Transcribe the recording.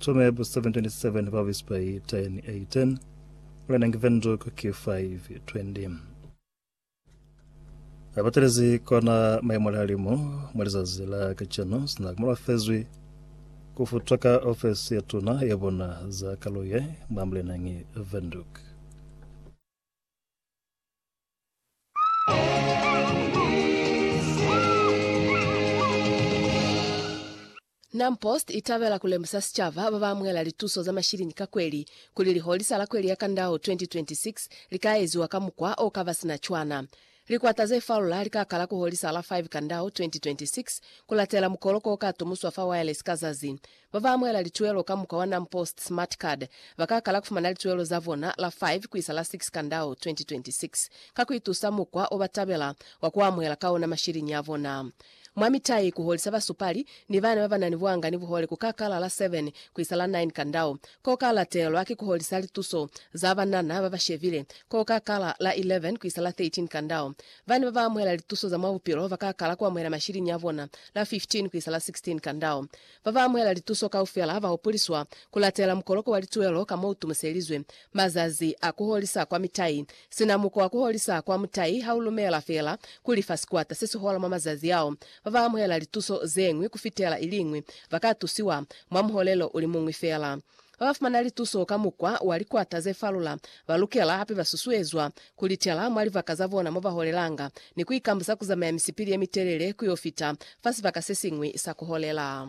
Tšomeeb 7:27 ba whisper 10 18 wena ngi venduk ki 5:20 ba batelezi kona maimo la limo mwa lizazi la kacenu sina ku mala fezwi ku futwa ka ofesi ya tuna ya bona za kaluye mwa mlenangi venduk NamPost i tabela ku lemusa sicaba ba ba amuhela lituso za mashilini ka kweli kuli liholisa la kweli ya kandau 2026 li ka eziwa ka mukwa o ka ba sina cwana. Likwata ze falula li ka kala ku holisa la 5 kandau 2026 ku latela mukoloko o ka tumuswa fa wireless ka zazi. Ba ba amuhela lituelo ka mukwa wa NamPost Smart Card ba ka kala ku fumana lituelo za bona la 5 ku isa la 6 Kandau 2026 ka ku itusa mukwa o ba tabela wa ku amuhela ka ona mashiliñi a bona. Mwa mitai, ku holisa basupali ni bana ba ba na ni buanga ni buhole ku ka kala la 7 ku isa la 9 Kandau, ko ka latelwa ki ku holisa lituso za banana ba ba shebile ko ka kala la 11 ku isa la 13 Kandau. Bana ba ba amuhela lituso za mwa bupilo ba ka kala ku amuhela mashiliñi a bona la 15 ku isa la 16 Kandau. Ba ba amuhela lituso kaufela ba hopoliswa ku latela mukoloko wa lituelo ka mo u tumuselizwe. Mazazi a ku holisa kwa mitai. Sina muko wa ku holisa kwa mutai ha u lumela fela ku lifa sikwata se si hola mwa mazazi ao, ba ba amuhela lituso ze ñwi ku fitela i li ñwi ba ka tusiwa mwa muholelo u li muñwi fela. Ba ba fumana lituso ka mukwa wa likwata ze falula ba lukela hape ba susuezwa ku li tela mwa libaka za bona mo ba holelanga ni ku ikambusa ku zamaya misipili ye mitelele ku yo fita fa sibaka se siñwi sa ku holela.